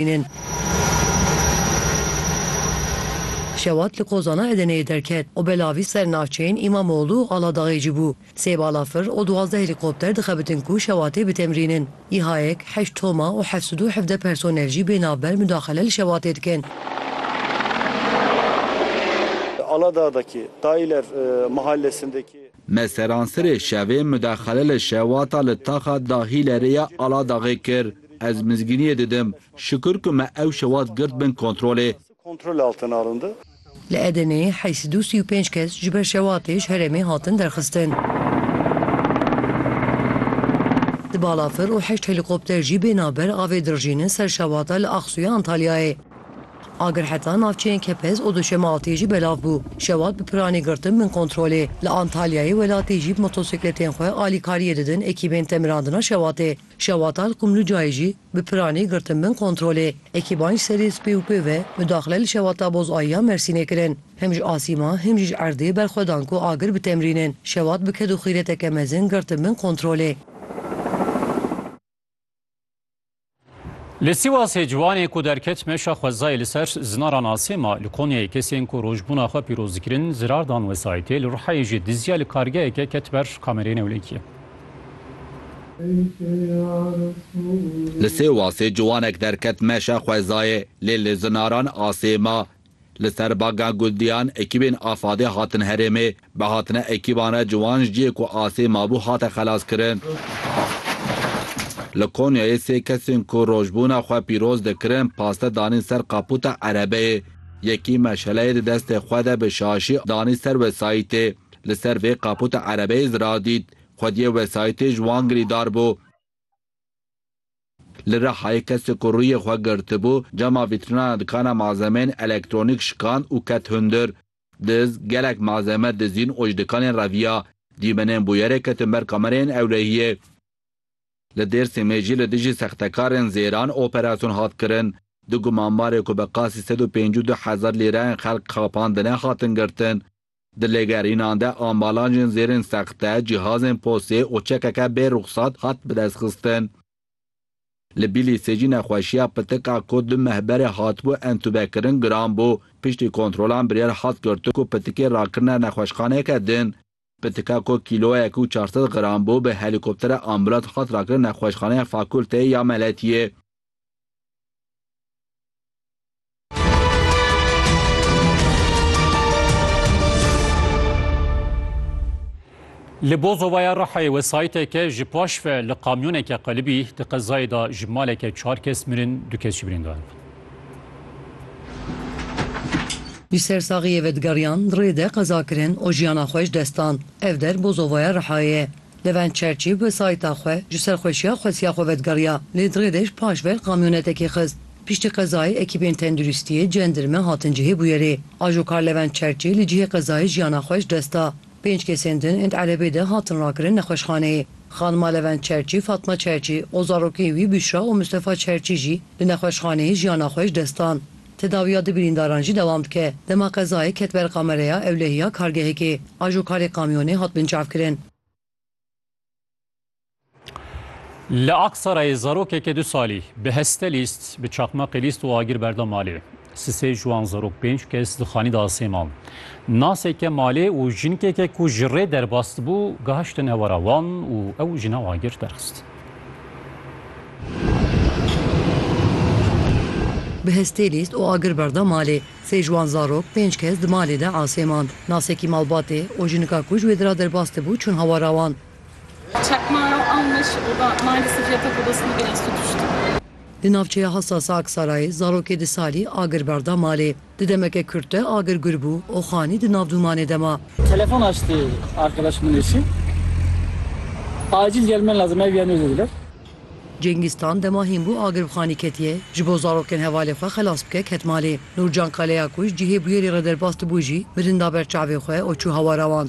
Hînên Şewat li kozana Edeneyê derket û belavî ser navçeyên Îmamoglû û Aladaxê cî bû. Sê balafir û duwazdeh helîkopter dixebitin ku Şewatê bitemrînin. Îhayek, heşt toma û heft sed û hevdeh personel jî bê navber mudaxile li Şewatê dikin. Me seranserê şevê mudexele li Şewata li taxa Dahîlerê ya Aladaxê kir. Ez mizgîniyê didim. Şikur ku me ew şewat girt bin kontrolê. Li Edeneyê heyî sed û sî û pênc kes ji ber şewatê ji herêmê hatin derxistin. Du balafir û heşt helîkopter jî bêhna ber avê dirijînin ser şewata li Axsuya Antalyayê. Agir heta navçeyên Kepez û Duşemealtiyê jî belav bû. Şewat bi piranî girtin bin kontrolê. Li Antalyayê welatî jî bi motosîkletên xwe alîkariyê didin ekîbên temirandina Şewatê. Şewata li Qumlucayê jî bi piranî girtin bin kontrolê. Ekîban ji serê spê û pê ve mudaxile li Şewata Bozayî ya Mersînê kirin. Him ji asîma him jî ji erdê berxwe dan ku agir bitemrînin. Şewat bi ked û xîreteke mezin girtin bin kontrolê. Li Sîwasê ciwanê ku derket meşa xwezayê li ser zina re nasê ma li Konyayê kesên ku rojbûna xwe pîroz dikirin zirar dan wesayîtê, li Rihayê jî dizya li kargeheke ket ber kamereyê newlekiyê. Li Sêwasê ciwanek derket meşa xwezayê lê li zinaran asê ma Li ser Baga Guldiyan ekîbên AFAD'ê hatin herêmê. Bi hatina ekîban re ciwan ji cihê ku asê mabû hate xelaskirin. Li Konyayê sê kesên ku rojbûna xwe pîroz dikirin paste danîn ser qaputa erebeyê. Yekî meşeleyê di destê xwe de bi şaşî danî ser wesayîtê. Li ser vê qaputa erebeyê ziradît. Xwediyê wesayîtê ji wan girîdar bû. Li Rihayê kesek ku rûyê xwe girtibû, cama vîtrînana dikana malzemeyên elektronîk şikand û ket hundir. Diz, gelek malzeme dizîn û ji dikanên reviya. Dîmenên bûyerê ketin ber kamereyên ewlehiyê. Li Dêrsimê jî li dijî sextekarên zêran operasyon hat kirin. Du gumanbarê ku bi qasî sed û pêncî û du hezar lîreyên xelk xapandine hatin girtin. Di lêgerînan de ambalajên zêrên sexte, cîhazên posê û çekeke bê ruxsat hat bidestxistin. Li Bîlîsê jî nexweşiya pitik a ku du meh berê hatibû entûbekirin giran bû. Piştî kontrolan biryar hat girtin ku pitikê rakirine nexweşxaneyeke din. Pitika ku kîloyek û çar sed giran bû bi helîkoptera ambûlans hat rakirin Nexweşxaneya Fakulteyê ya Meletiyê. Li Bozovaya Rihayê wesayîteke ji paş ve li kamyoneke qelibî di qezayê de ji maleke çar kes mirin, du kes jî birîndar bûn. Ji ser saxiyê ve digeriyan, rê de qeza kirin û jiyana xwe ji dest dan. Ev der Bozovaya Rihayê ye. Levent Çerçî bi sayîta xwe ji serxweşiya xwesiya xwe vedgeriya lê di rêdej paş ver kamyonetekê xist. Piştî qezayê ekîbên tenduristiyê, cendirme hatin cihê bûyerê. Ajokar Levent Çerçî li cihê qezayê jiyana xwe ji dest da. Pênc kesên din ênd erebê de hatin rakirin nexweşxaneyê. Xanima Levent Çerçî Fatma Çerçî û zarokên wî Büşra û Mistefa Çerçî jî li nexweşxaneyê jiyana xwe ji dest dan. Tedawiya du birîndaran jî dewam dike. Dema qezayê ket ber kamereya ewlehiya kargehekê, ajokarê kamyonê hat binçavkirin. Li Aksarayê zarokeke du salî bi heste lîst, bi çaqmaqê lîst û agir berda malê. Sisê ji wan zarok pênc kes di xanî de asê man. Naseke malê û jinkeke ku ji rê derbas dibû gihiştin ewara wan û ew jina agir derxist. Bi hestê lîst û agir berda malê. Sê ji wan zarok pênc kes di malê de asê mand. Nasekî malbatê û jinika ku ji wê di ra derbas dibû çûn hawara wan. Di navçeya Hassasa Aksarayê zarokê di salî agir berda malê. Di demeke kurt de agir gul bû û xanî di nav dûmanê de ma. Telefon açtı arkadaş min eşi. Acil gelmen lazım ev yeno dediler. Cengîz Tan dema hîn bû agir bi xanî ketiye, ji bo zarokên hevalê xwe xelas bike ket malê. Nûrcan Kaleyakuş cihê bûyerê re derbas dibû jî mirin da ber çavê xwe û çû hawara wan.